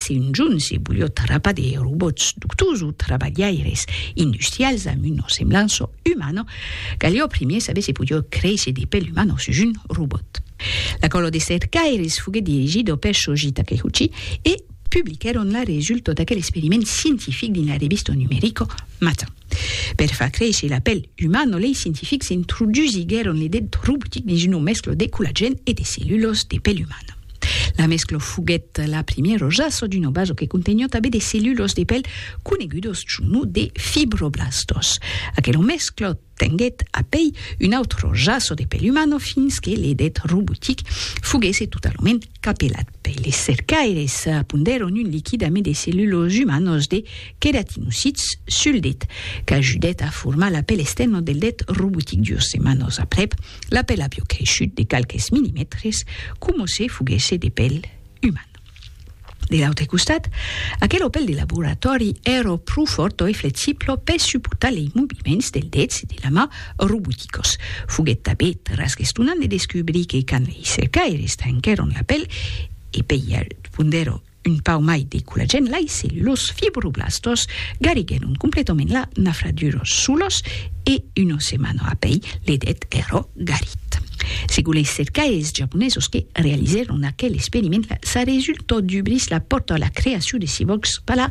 Se'n junsi bulhòt rapa de robòts doctors o trabalhaires industrials damb una semblança umana, calió primièr saber se podió créisher de pèl umana sus un robòt. La còla de cercaires foguèt dirigida per Shoji Takeuchi e publiquèron la resulta d'aquel experiment scientific dins la revista numerica Matin. Per far créisser la pèl umana, lei scientifics introdusiguèron l'idèt robòtic dins una mescla de collagèn e de cellulas de pèl umana. La mescla foguèt la primièra usatge d'una basa que conteniá tanben de cellulas de pèl conegudas suu nom de fibroblastas. Aquela mescla tenguèt apèi una autra usatge de pèl umana fins que l'idèt robòtic foguèsse totalament Capelat per les cercaires, pondèron un liquid amid de cellulos umanos de queratinocits sul det, qu'ajudèt a formar la pèl extèrna del det robotic. Dues setmanas aprèp, la pèl aviá creishut de qualques millimètres coma se foguèsse de pèl uman. De l'autre costat, aquela pèl de laboratòri èra pro fòrta e flexibla per suportar lei moviments del dets e de la mà roboticos. Foguèt tanben trasgestonant de descubrir que quand lei cercaires tranquèron la pel e pei pondèron un pauc mai de collagèn lai se los fibroblastos gariguèron completament la nafradura solos e una setmana apei l'edet èra garit. Segon lei cercaires japonesos que realizèron aquel experiment, sa resulta dubrís la pòrta a la creacion de cibòrgs per la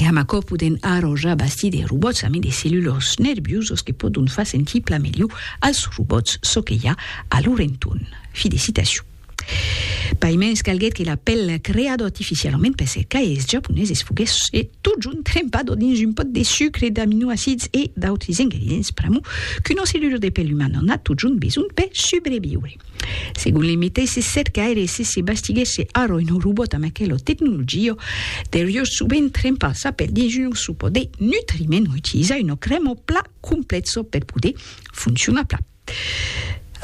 E amb aquò podèm ara ja bastir de robòts amé de cellulors nerviusos que pòdon far sentir plan melhor als robòts çò que i a a lor entorn. Fi de citacion. Paimens calguèt que l'apèl creado artificialament per ser caeis japoneses foguèsse totjorn trempado dins un pòt de sucre, d'aminoacids e d'autres ingredients pr'amor qu'una cellula de pèl umana n'a totjorn besonh per subreviure. Segon li meteissi cercaires, si se bastiguèsse ara un robòt amb aquela tecnologia, deurió sovent trempar sa pel dins un osso per de nutriment o utilizar una crèma o plat complèxa per poder foncionar plat.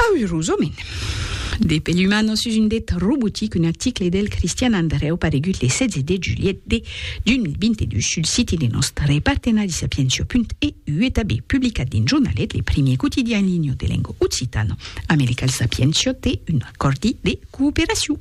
Aürosament, de pel umana sus un det robotic, un article del Cristian Andrèu paregut le 16 de julhet de 2022 sul siti de nòstre partenari Sapientia.eu e tanben publicat dins Jornalet, le primièr quotidian en linha de lenga occitana. Americal Sapientia de un acòrdi de cooperacion.